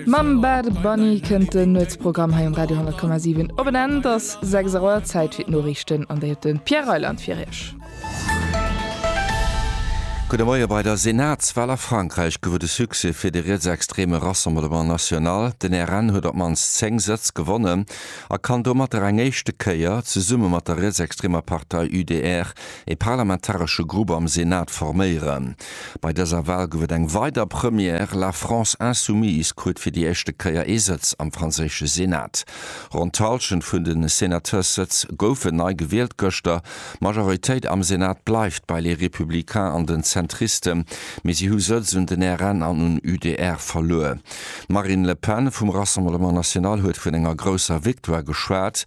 Mam Bad Bunny kënnt den Nuetsprogramm hei um Radio 10,7 op en Enn. Et ass 6 Auer, Zäit fir d'Noriichten an déi huet de Pierre Reyland fir Iech. Gudde Moie, Bei der Senatswal a Frankräich gouf et e Succès fir de rietsextreme Rassemblement National. Den RN huet op d'mannst 10 Sëtz gewonnen a kann domatter eng éischte Kéier, zesumme mat der rietsextremer Partei UDR, e parlamentaresche Grupp am Senat forméieren. Bei dëser Wal gouf et eng weider Première, La France insoumise krut fir déi éischte Kéier ee Sëtz am franséische Senat. Ronn d'Hallschent vun de Sénateurssëtz goufen nei gewielt gëschter. D'Majoritéit am Senat bleift bei Les Républicains an den Zentristen, mee si hu Sëtz un den RN an un UDR verluer. D'Marine Le Pen vum Rassemblement National huet vun enger grousser Victoire geschwat.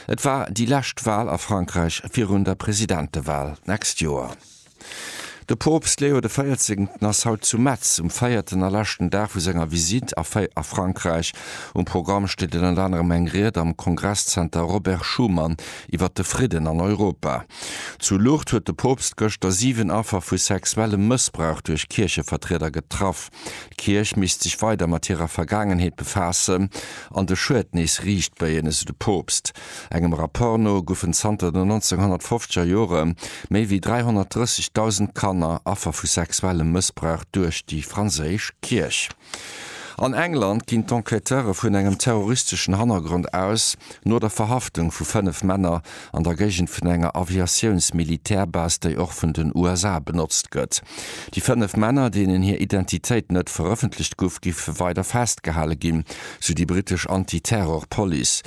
Et war déi lescht Wal a Frankräich virun der Presidentewal d'nächst Joer. De Poopst Leo de Véierzéngten ass haut zu Metz um véierten a leschten Dag vu senger Visitt a Frankräich. Um Programm steet ënnert anerem eng Ried am Kongresszenter Robert Schuman iwwer de Fridden an Europa. Zu Lourdes huet de Poopst gëschter 7 Affer vu sexuellem Mëssbrauch duerch Kierchevertrieder getraff. D'Kierch misst sech weider mat hirer Vergaangenheet befaassen an de Schued nees riicht béien, esou de Poopst. Engem Rapport no goufen zanter den 1950er Jore méi wéi 330.000 Kanner Affer vu sexuellem Mëssbrauch duerch déi franséisch Kierch. An England ginn d'Enquêteure vun engem terroristeschen Hannergrond aus, no der Verhaftung vu fënnef Männer an der Géigend vun enger Aviatiouns-Militärbase, déi och vun den USA benotzt gëtt. Déi fënnef Männer, deenen hir Identitéit net verëffentlecht gouf, goufe weider festgehale ginn, sou déi britesch Anti-Terror-Police.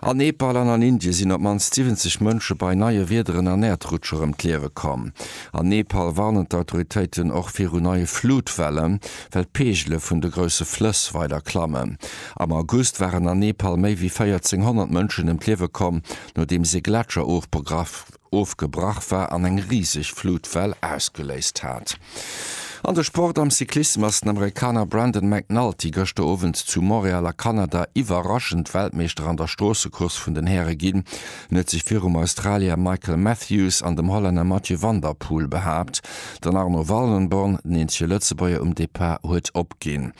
An Nepal an an Indien sinn op d'mannst 70 Mënsche bei neie Wiederen an Äerdrutscher ëm d'Liewe komm. An Nepal warnen d'Autoritéiten och viru neie Flutwellen, well d'Peegele vun de grousse Flëss weider klammen. Am August waren an Nepal méi wéi 1400 Mënschen ëm d'Liewe komm, nodeems ee Gletscher ofgegraff ofgebrach war an eng riseg Flutwell ausgeléist hat. An de Sport, Am Cyclissem ass den Amerikaner Brandon McNulty gëschter Owend zu Montréal a Kanada iwwerraschend Weltmeeschter an der Stroossecourse vun den Häre ginn. En huet sech virum Australier Michael Matthews an dem Hollänner Mathieu van der Poel behaapt. Den Arno Wallenborn, den eenzege Lëtzebuerger um Depart, huet opginn.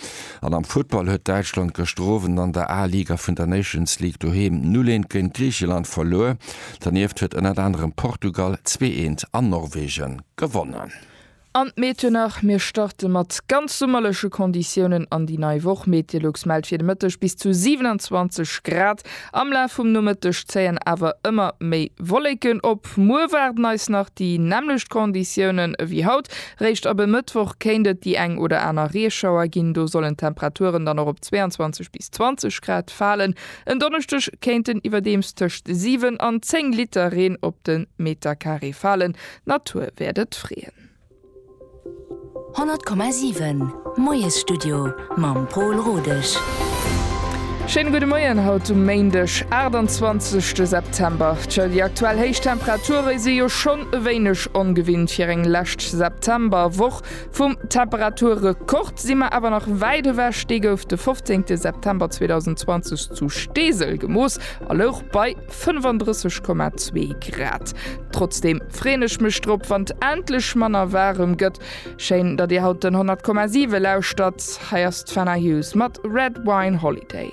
An am Futtball huet Däitschland gëschter Owend an der A-Liga vun der Nations League doheem 0, 1 géint Griicheland verluer. Dernieft huet ënnert anerem Portugal zwee eent an Norwegen gewonnen. An d'Méthenach, Mir starte mat ganz summerleche Konditiounen an déi nei Woch. Metelux mellt fir de Mëtteg bis zu 27 Grad. Am Laf vum Nomëtteg zéien awer ëmmer méi Wolleken op. Muer waarden eis nach déi nämmlecht Konditiounen ewéi haut. Réischt ab e Mëttwoch kéint et déi eng oder aner Reeschauer ginn. Do sollen d'Temperaturen dann och op 22 bis 20 Grad falen. En Donneschdeg kéinten iwwerdeems tëscht 7 an 10 Liter Reen op de Metercarré falen, d'Natur wäert et freeën. 100,7 Moiesstudio mam Pol Rodesch. Schéine gudde Moien haut um Méindeg, 28 de September. Tjo, déi aktuell héich Temperature si jo schonn e wéineg ongewinnt fir eng lescht Septemberwoch. Vum Temperaturrekord si mer awer nach wäit ewech, dee gouf de 15 September 2020 zu Steesel gemooss a louch bei 35,2 Grad. Trotzdeem freeën ech mech drop, wann et endlech manner waarem gëtt. Schéin, datt dir haut den 100,7 lauschtert. Hei ass d'Fenna Hughes mat Red Wine Holiday.